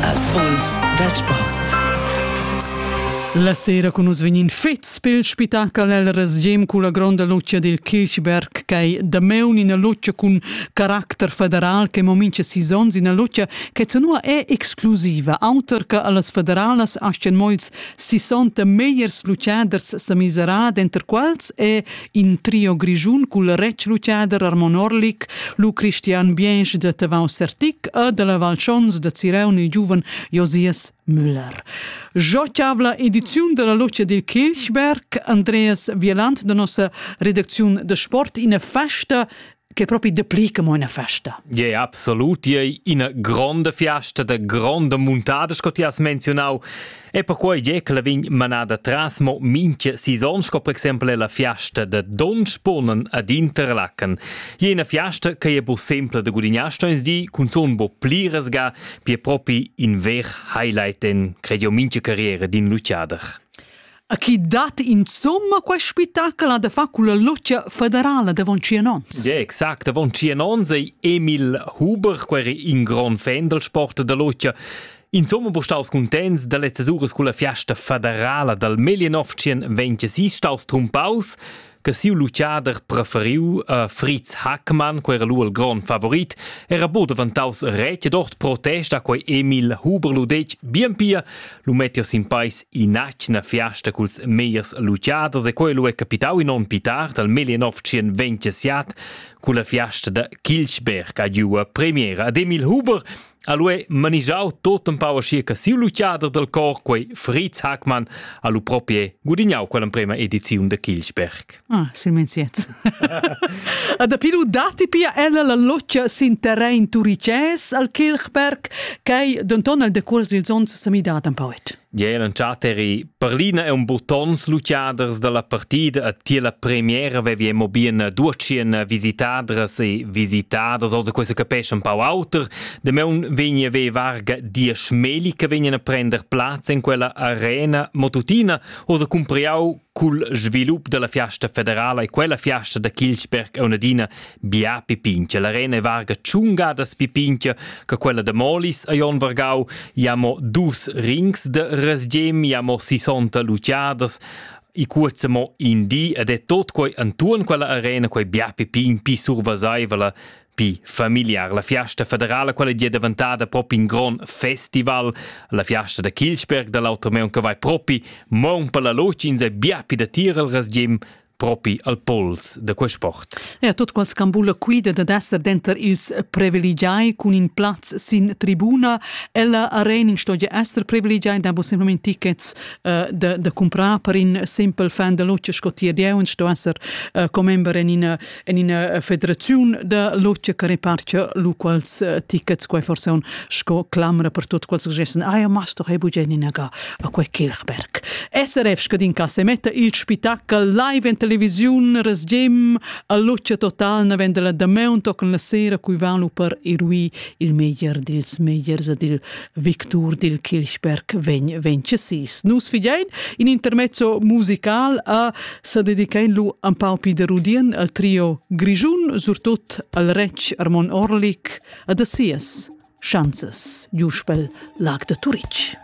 Impuls dal sport. La sera con nus vegnin fets pel spitachel el resgem culla gronda lucia dil Kirchberg ch'ei damaun ina lucia cun caracter federal che mo mincha sis onns ina lucia che zanua è exclusiva auter che allas federalas astgan mo ils 60 megliers luciaders sa miserar denter quals è In trio grischun cul retschluchader Armon Orlik, lu Christian Biensch da Tavau Sertic e de la Val Schons da Ziraun il giuven Josias Müller. Giocavla ediziun della Luce dil Kilchberg, Andreas Vieland de nossa redacziun de sport, ina festa che propi dapli che mo ina festa. Ja, yeah, absolut. Ja, ina gronda fiasta da gronda muntada, sco ti has menzionau. E perquei je che la vegn manada tras mo minche saison, sco per exempel è la fiasta da Donspunen ad Interlaken. Je una fiasta che è bo sempre da gudignare, stoins di, cun son bo pliresga, pie propi in ver highlight in, credo, minche carriera din Luciader. A chi dat insomma quest spettacol da far culla lucia federala davon Cianons? Ja, exact, davon Cianons ei Emil Huber, quer in grand fan del sport da lucia. Insomma, bu staus contents da lezzas uras culla fiasta federala dal Melianov-Cien vegn staus trumpaus. che siu luciader preferiu a Fritz Hackmann, quei era lu il grond favorit, era buca devantaus retg dort protesta quei Emil Huber lu detg bien pia, lu mettias in pais inatgna fiasta culs meiers luciaders e quei lu è capitau in onn più tard al 1927 culla fiasta da Kilchberg a giua premiera ad Emil Huber Ha lui manigiau tot empau aschi che siu luciader dal cor, quei Fritz Hackmann, ha lu proprio gudignau quell'emprema ediziun de Kilchberg. Ah, silmeins jetzt. A dapi lu datti pia ella la loccia sin terrain turicès al Kilchberg, ch'ei denton el decuors dils onns semidada en poet. Jeu entschatteri perlina e un buttons luciaders dalla partida a ti la premiera vevi mo bien ducien visitadras e visitaders also questo capisce un pau auter de meun vegni ve varga diesch meli che vegnan a prender plaz in quella arena mo tutina osa cumpriau Cul svilup dalla fiasta federala e quella fiasta da Kilchberg auna adina bia pipincha. L'arena è varga tschunga da pipincha che quella da Molis a Jon Vargau. I ha mo dus rings de resgem, i ha mo 60 luciadas. I cuozza mo in di ed è tot quei antuon quella arena quei bia pipin pi survasaiva la Pi familiar la fiasta federala, quella è daventada propi in grond festival. La fiasta da Kilchberg da l'automeun che vai propi mon per la locins e bia pi da tir al rasgim propi al pols da quel sport. Ja, tot qual scambula quida da dester denter ils privilegiai cun in plaz sin tribuna. Ella arena stoja ester privilegiai, da bo semplament tickets uh, da, da comprar per in simpel fan da luce sco ti dieu, sto esser uh, commember in ina en ina federaziun da logia che repartia lu quals eh, tickets quei forse un sco clamra per tutti quels che gessen ah ja machst doch ebu geninaga a quei Kirchberg SRF scadin ca se metta il spettacol live in televisiun resgem a luce total na vende la da mount con la sera cui vanu per irui il meglier dils megliers ed il victur dil Kilchberg vegn vegn sis. Nus fidein in intermezzo musical a sa dedicain lu an pau pi de rudien al trio Grischun, surtut al retg Armon Orlik, ad a sias chanzes, Juspel Lag de Turitg.